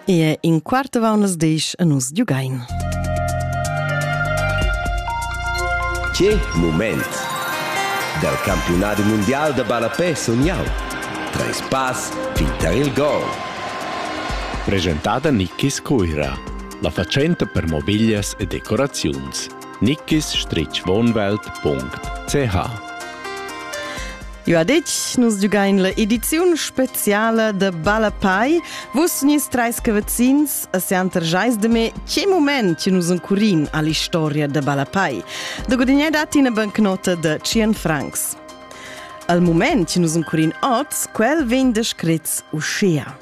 Ie in quart avant las desch e nus giugain. Che moment! Dal campiunat mundial da ballapè sun jau. Treis pass fin tar il gol. Presentada Nikis Cuira, la fatschenta per mobiglias e decoraziuns. nickisstritchwohnwelt.ch Ja ditg, nus giugain l'ediziun speziala de Balapai. Vus nis treis cavazins a Santer Jais de me che moment che nus encurin all'historia de Balapai. De gudignar dat ina bancnota de 100 francs. Al moment che nus encurin oz, quel vegn descrit uschia.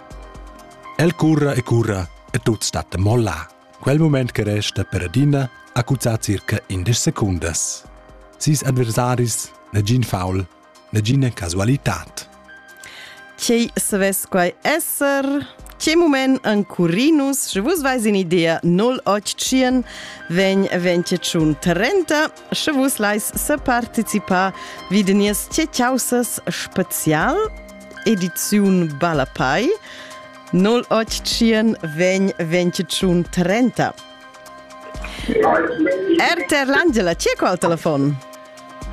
El curra e curra e tut stat molla. Quel mument che resta per adina ha cuzzà circa indesch secundas. Sis adversaris, nagin foul, nagina casualitad. Quei savess quai esser? Che mument an Curinus, sche vus vais in idea 081 vegn 21 30, sche vus lais se participar vi de nies ce causes spezial ediziun Balapai, 0800 vegn 21 30. RTR L'Angela, chi è qua al telefon?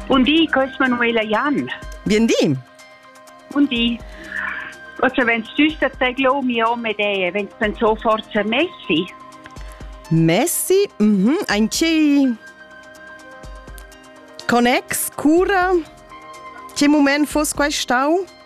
Buondì, questo è Manuela Jan. Buondì. Buondì. Also, wenn du tust, dass ich mir auch mit dir, wenn du dann so forza Messi. Messi? Mhm, ein chi con ex cura? Che moment fosse qua stau?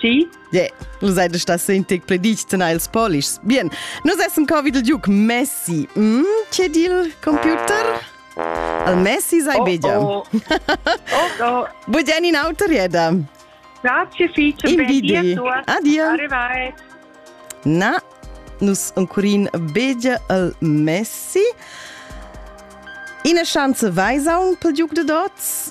Sì? Yeah, vus seid stas in tic pledic tena ils polischs. Bien, nus essen co vid il Duke Messi. Mm, c'è dil computer? Al Messi sei oh, bedia. Oh, oh, oh. Bugian in auto rieda. Grazie fice. In bidi. Adia. Arrivai. Na, nus uncurin bedia al Messi. Ina chance vai saun pel Duke de Dots?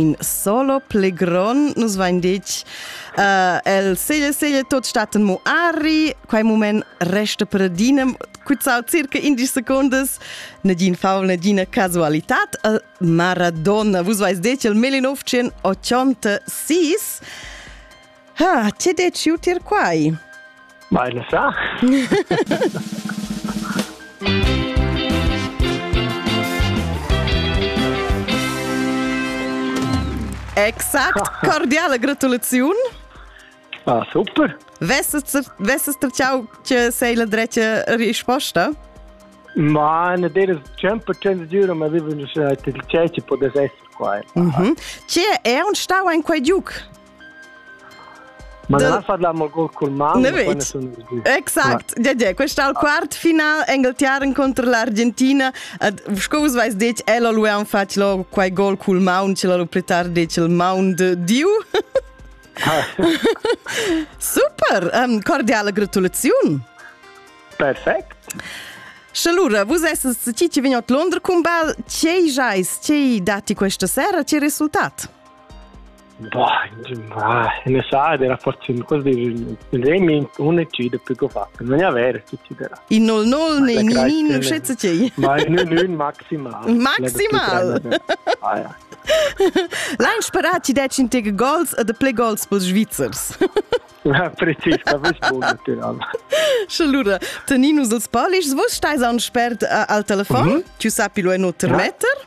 in solo plegron nus vain ditg uh, el seglia seglia tot staten mo ari quai moment resta per dinem cuzzau circa 11 secondas nadin faul nadina casualitat uh, Maradona vus vais detg il 1986 Ha, ti deci utir quai? Mai ne sa. Exakt, cordiale gratulaziun. Ah, super. Vesses tracciau che sei la drecia risposta? Ma ne deres tempo cens dura ma viven dus il ceci podes esser qua. Mhm. Che è un stau ein quei giuc? Ma non la parliamo col col mano, poi nessuno Exact. Ja, ja, questa è il quart final Engeltiar contro l'Argentina. Sco vos vais detg, ella lui han fatto lo quai gol col maun, ce l'ho più tardi detg il maun de Dio. Super, um, cordiale gratulazione. Perfect. Și Lura, vă să ci ce veniat Londra cum bal, ce jais, ce dati questa sera, ce rezultat? Boah, necessaria era forse in cosa di Remi un eccide più che fa non è vero tutti della in nol nol nei ni non scetze ti ma non non maximal maximal L'han sparat ti decin te goals a de play goals per Svizzers Precis, da vus bun natural. Schalura, teninus els polischs, vus stai an spert al telefon, mhm. tu sapi lo en oter metter?